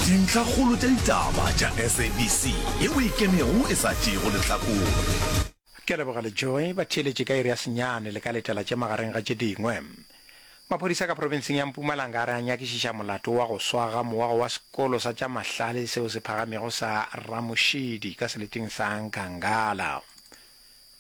Dintlhakgolo tša ditaba tša SABC ye o e kenego e sa tšeego lehlakore. Ke a leboga le Joy ba theeletše ka iri ya senyane le ka letela tše magareng ga tše dingwe. Maphodisa ka profenseng ya Mpumalanga a re a nyakišiša molato wa go swa ga mowa wa sekolo sa tša mahlale seo se phagamego sa Ramoshidi ka seleteng sa Nkangala.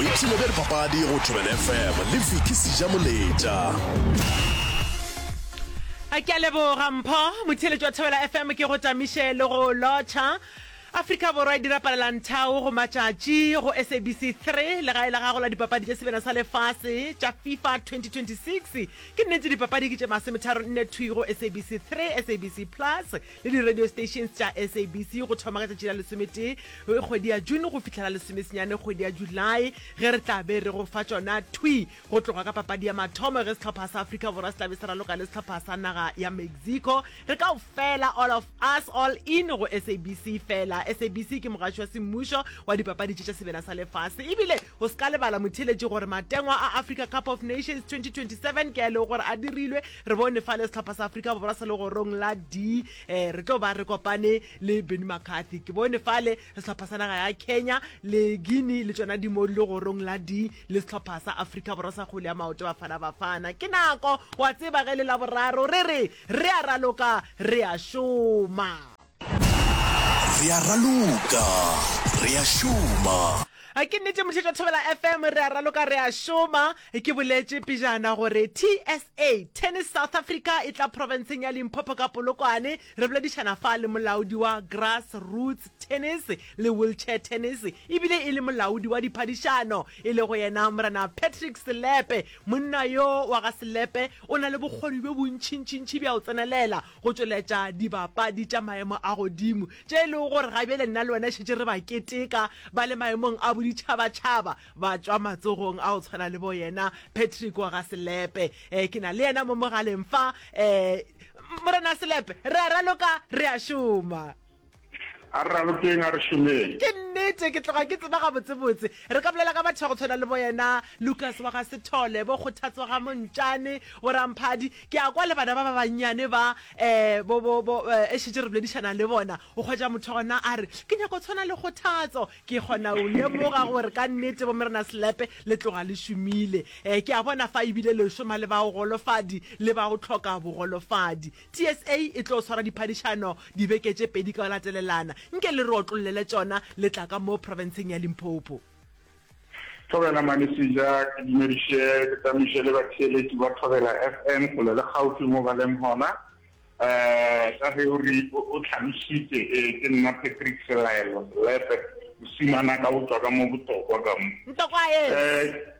boipshino bja dipapadi go thobela fm le viki seja moletša a ke a leboga mpho motheletši wa thobela fm ke go tamiše le go lotšha afrika borwa e dira palelanthao go matšatši go sabc 3 le gae la gago la dipapadi tša sebena sa lefase tša fifa 2026 ke nnete dipapadi ke tše masemetharo nne thwi go sabc 3 sabc plus le di-radio stations tša sabc go thoma ka tšatši la lesometee kgwedi ya june go fihlela lesomesenyane kgwedi ya july ge re tla be re go fa tšona thwi go tloga ka papadi ya mathomo ge sehlopha sa afrika borwa se tla be se raloka le sehlopha sa naga ya mexico re kao fela all of us all in go sabc fela sabc ke mogatši wa semmušo wa dipapadi tše tša sebena sa lefase ebile Go se ka lebala motheeletši gore matengwa a Africa Cup of Nations 2027 ke a e lego gore a dirilwe. Re bone fale sehlopha sa Afrika Borwa se legorong la D. Eh, re tlo ba re kopane le Benni McCarthy. Ke bone fale sehlopha sa naga ya Kenya le Guinea le tšona di mo di legorong la D le sehlopha sa Afrika Borwa sa kgole ya maoto Bafana Bafana. Ke nako wa tseba ge le laboraro re re re a raloka re a šoma. Re a raloka, re a šoma. A ke nnete mohlitšo wa Thobela FM re a raloka re a šoma ke boletše pejana gore TSA Tennis South Africa e tla profenseng ya Limpopo ka Polokwane re boledišana fa le molaodi wa Grass Roots Tennis le Wheelchair Tennis ebile e le molaodi wa diphadišano e le go yena Morena Patrick Selepe monna yo wa ga Selepe o na le bokgoni bjo bontšintšintši bja go tsenelela go tšweletša dibapadi tša maemo a godimo tše e lego gore ga bjale nna le wena šetše re ba keteka ba le maemong a boditšhabatšhaba ba tšwa matsogong a go tshwana le bo yena Patrick wa ga Selepe um ke na le yena mo mogaleng fa um Morena Selepe re a raloka re a šoma A re ralokeng, a re šomeng. Ke nnete, ke tloga ke tseba gabotsebotse. Re ka bolela ka batho ba go tshwana le boyena Lukas wa ga Sethole, bo Kgothatso ga Montšane, bo Ramphadi. Ke a kwa le bana ba ba bannyane ba, um bo, bo, bo, um e šetše re boledišana le bona, o hwetša motho gona a re, Ke nyaka go tshwana le Kgothatso. Ke kgona go lemoga gore ka nnete bomrena Selepe le tloga le šomile. Um ke a bona fa e bile le šoma le ba go golofadi le ba go hloka bogolofadi. TSA e tlo swara diphadišano dibeke tše pedi ka go latelelana. Nke le re otlollele tšona le tla ka mo profenseng ya Limpopo. Thobela Malisija, ke dumediše ke tammiše le batheeletši ba Thobela FM kgole le kgaufwi mo ba leng gona. Um ka ge o re o tlhalošitše, ee ke nna Patrick Selaelo Selepe, mosimana ka go tšwa ka mo Botokwa ka mo. Ntokwae! Um.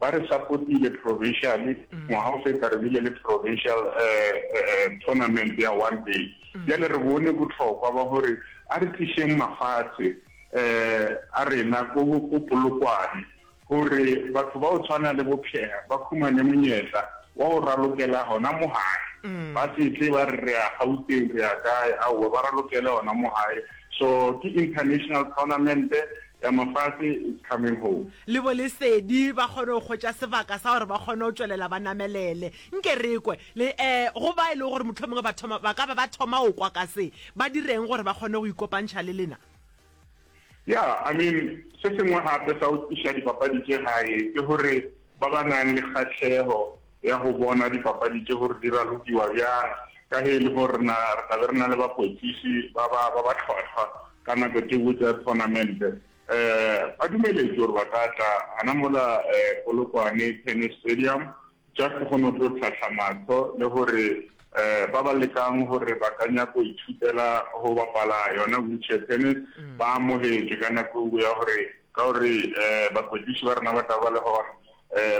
Ba re sapotile provincially ngwaga o feta, re bile le provincial tournament ya one day. Bjale re bone bohlokwa ba gore a re tlišeng mafatshe a rena ko Polokwane gore batho ba go tshwana le bo Pierre ba khumane monyetla wa go ralokela gona mo gae, ba se tle ba re re ya Gauteng, re ya kae, aowa, ba ralokele gona mo gae. So ke international tournament Ya mafase is coming home. Le bo Lesedi ba kgone go hwetša sebaka sa gore ba kgone go tšwelela ba namelele. Nke re kwe. Le, eh, go ba e lego gore mohlomongwe ba thoma, ba ka ba ba thoma go kwa ka se, ba direng gore ba kgone go ikopantšha le lena? Ya, I mean, se sengwe gape sa go tliša dipapadi tše gae ke gore ba ba nang le kgahleho ya go bona dipapadi tše gore di ralokiwa bjang, ka ge e le gore re na re tla be re na le bakwetliši ba ba ba ba tlhwahlwa ka nako tše botse ya thonamente. Um ba dumeletšwe gore ba ka tla gana mola um Polokwane Tennis Stadium just go no tlo tlhahla mahlo le gore um ba ba lekang gore ba ka nyaka go ithutela go bapala yona wheelchair tennis ba amogetšwe ka nako eo ya gore ka gore um bakwetliši ba rena ba tla ba le gona.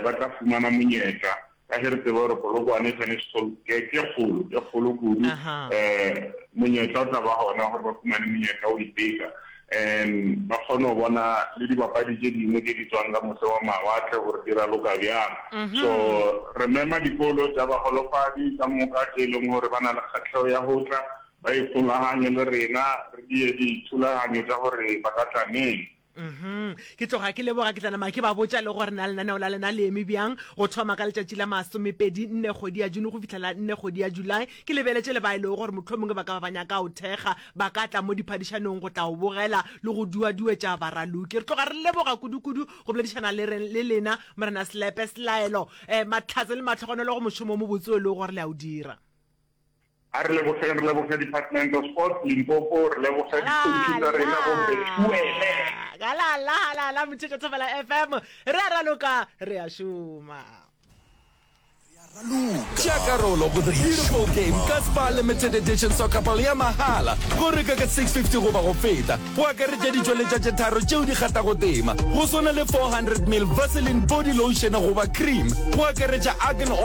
ba tla fumana monyetla, ka ge re tseba gore Polokwane e swanetše Salt ke kgolo, e kgolo kudu, monyetla o tla ba gona gore ba fumane monyetla wa go iteka, ba kgone go bona le dibapadi tše dingwe tše di tswang ka mose wa mawatle gore di raloka bjang. So re mema dikolo tša bagolofadi ka moka tše e leng gore ba na le kgahlego ya go tla ba ikgolaganye le rena, re die dithulaganyo tša gore ba ka tla neng. uhum ke tloga ke leboga ke tlanama ke ba botša le gore na lenaneo la lena le eme bjang go thoma ka letšatši la masomepedi nne kgwedi ya june go fitlhela nne kgwedi ya july ke lebeletše le ba e lego gore mohlomongwe ba ka ba ba nyaka o thekga ba ka tla mo diphadišanong go tla o bogela le go duaduetša baraloki re tloga re leboga kudukudu go boledišana le re le lena morena selepe selaelo um eh, mahlatse le matlhogonolo go mošomo mo botse o e lego gore le a o dira A re lebogeng, re leboge Department of Sports Limpopo, re leboge di-coach tsa rena bo Bethuele. Galala, galala, Motsheko Thobela FM, re a raloka, re a šoma. Tšea karolo go the beautiful game ka Spar Limited Edition Soccer Ball ya mahala. Go reka ka 650 goba go feta go akaretša ditšweletša tše tharo tšeo di kgathago tema, go swana le 400 mil Vaseline body lotion goba cream, go akaretša argan oil